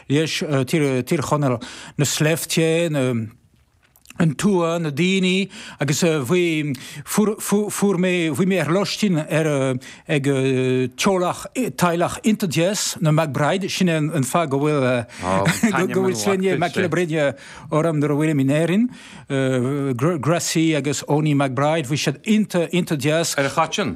leis, Tír Chonaill, na sléibhte, an tuath, na daoine agus bhí, fuair, fuair mé, bhí mé ar lóistín ar, ag teaghlach, teaghlach iontach deas, na McBride, sin é an fáth go bhfuil, go bhfuil sloinne Mac Giolla Bhríde orm nuair a bhfuilim in Éirinn, Gracie agus Eoiní McBride, bhí siad iontach, iontach deas. Ar a chait sin?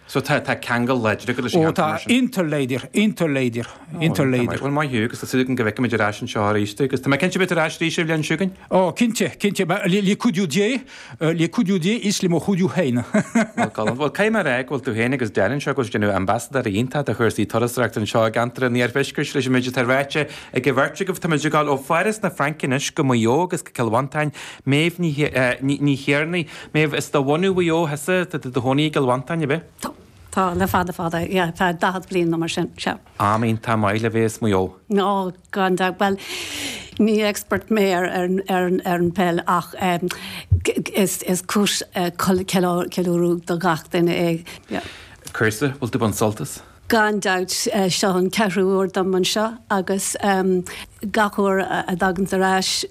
So tá ceangal láidir agat leis an gceantar, mar sin? Ó, tá, iontach láidir, iontach láidir, iontach láidir. Bhuel, maith thú, agus tá súil agam go bhfeicfimid ar ais anseo arís tú, agus tá mé cinnte go mbeidh tú ar ais arís ar an bhliain seo chugainn. Ó, cinnte, cinnte, le cuidiú Dé, le cuidiú Dé is le mo chuidiú féin. Bhuel, Colm, bhuel, caithfidh mé a rá go bhfuil tú féin agus Daire anseo ag dul a dhéanamh ambasadóirí iontacha do chúrsaí turasóireachta anseo i gceantar an iarthuaiscirt leis an méid atá ráite ag an bheirt agaibh. Tá muid ag dul ó Pháras na Fraince anois go Maigh Eo agus go Cill Mhantáin. Méabh Ní Thiarnaigh. Méabh, Is de bhunadh Mhaigh Eo thusa, tá tú i do chónaí i gCill Mhantáin, ab ea? Tá. Tá le fada fada, yeah, feadh daichead bliain nó mar sin, sea. Am iontach maith le bheith as Maigh Eo. Ó, gan dabht. Bhuel, ní expert mé ar an, ar an, ar an pheil ach is, is cúis ceiliúradh do gach duine é, yeah. Cúrsa, bhfuil tú ag baint sult as? Gan dabht, seo an ceathrú huair dom anseo agus gach uair a dtagaimse ar ais,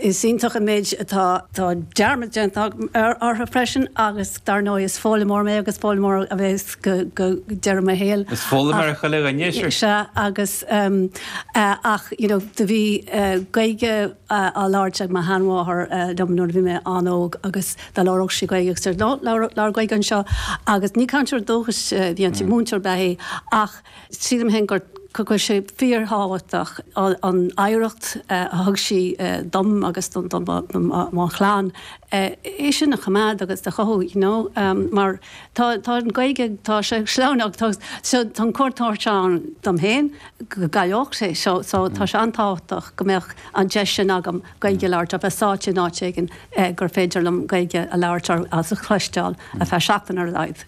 is iontach an méid atá, tá dearmad déanta agam orthu freisin agus dar ndóigh is foghlaimeoir mé agus foghlaimeoir a bheas go deireadh mo shaoil. Is foghlaimeoir chuile dhuine, ar sise. Sea, agus ach you know do bhí Gaeilge á labhairt ag mo sheanmháthair liom nuair a bhí mé an-óg agus. dá labhródh sí Gaeilge agus deir 'No, labhair Gaeilge anseo' agus ní cainteoir dúchais a bhí inti, múinteoir ab ea í ach sílim féin go bhfuil sé fíorthábhachtach an oidhreacht a thug sí dom agus do mo chlann, é sin a choimeád agus a chothú you know mar tá an Ghaeilge, tá sé sleamhain, tá an chontúirt ann dom féin go gcailleoidh sé so tá sé an-tábhachtach go mbeadh an deis sin agam. Gaeilge a labhairt, bheith sáite in áit éigin gur féidir liom Gaeilge a labhairt agus a chloisteáil ar feadh seachtain ar a laghad.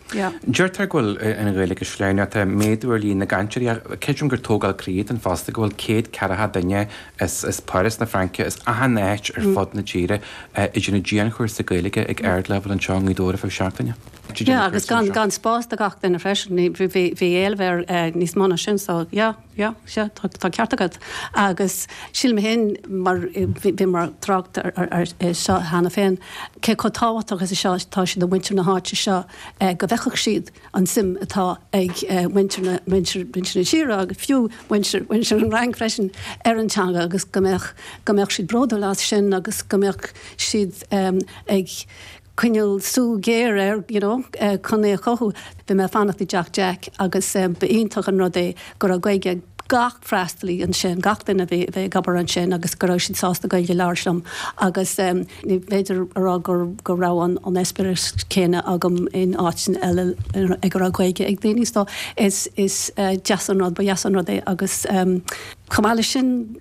Deirtear go bhfuil an Ghaeilge slán, tá méadú ar líon na gcainteoirí ach creidim gur tógáil croí atá ann fosta go bhfuil céad ceathracha duine as Páras na Fraince, as achan áit ar fud na tíre, ag déanamh dianchúrsa Gaeilge ag ardleibhéal anseo i nGaoth Dobhair ar feadh seachtaine. Yeah, agus gan spás do gach duine freisin, bhí éileamh ar níos mó ná sin so yeah. Sea, sea, tá ceart agat. Agus sílim féin, mar bhíomar ag trácht air seo cheana féin, cé chomh tábhachtach is atá sé do mhuintir na háite seo go bhfeicfeadh siad an tsuim atá ag muintir na tíre agus fiú muintir an Fhrainc freisin ar an teanga agus go mbeadh siad bródúil as sin agus go mbeadh siad ag coinneáil súil ghéar air you know chun é a chothú. Bhí mé ag fanacht i dTeach Jack agus ba iontach an rud é go raibh Gaeilge ag gach freastalaí ansin, gach duine a bhí ag obair ansin agus go raibh siad sásta Gaeilge a labhairt liom agus ní féidir a rá go raibh an eispéireas céanna agam in áiteanna eile ag a raibh Gaeilge ag daoine so is deas an rud, ba dheas an rud é agus chomh maith leis sin,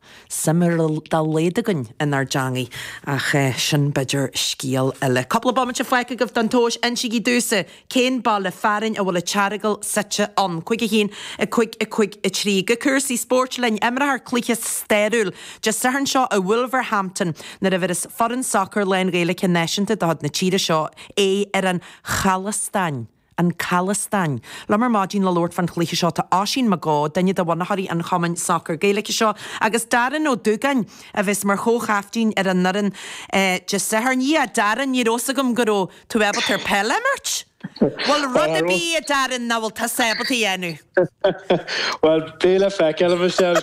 suim ar dá laghad againn inár dteangaidh, ach sin b'fhéidir scéal eile. Cúpla bomaite fágtha agaibh don tomhas. Insígí domhsa cén baile fearainn a bhfuil an tEaragal suite ann. Cúig a haon, a cúig, a cúig a trí. Go cúrsaí spóirt linn. Imreofar cluiche stairiúil Dé Sathairn seo i Wolverhampton nuair a imreos foireann sacair lán-Ghaeilge náisiúnta de chuid na tíre seo é ar an Chalastáin. an Chalastáin. Liom ar maidin le labhairt fán chluiche seo tá Oisín Mac Eó, duine de bhunaitheoirí an chumainn sacair Gaeilge seo, agus Darren Ó Dúgáin, a bheas mar chomhchaiftín ar an nfhoireann Dé Sathairn. Yeah, Darren, ní raibh 's agam go raibh tú ábalta peil a imirt! Bhuel, rud ar bith, a Darren, nach bhfuil tusa ábalta a dhéanamh? Bhuel, beidh le feiceáil, a Michelle.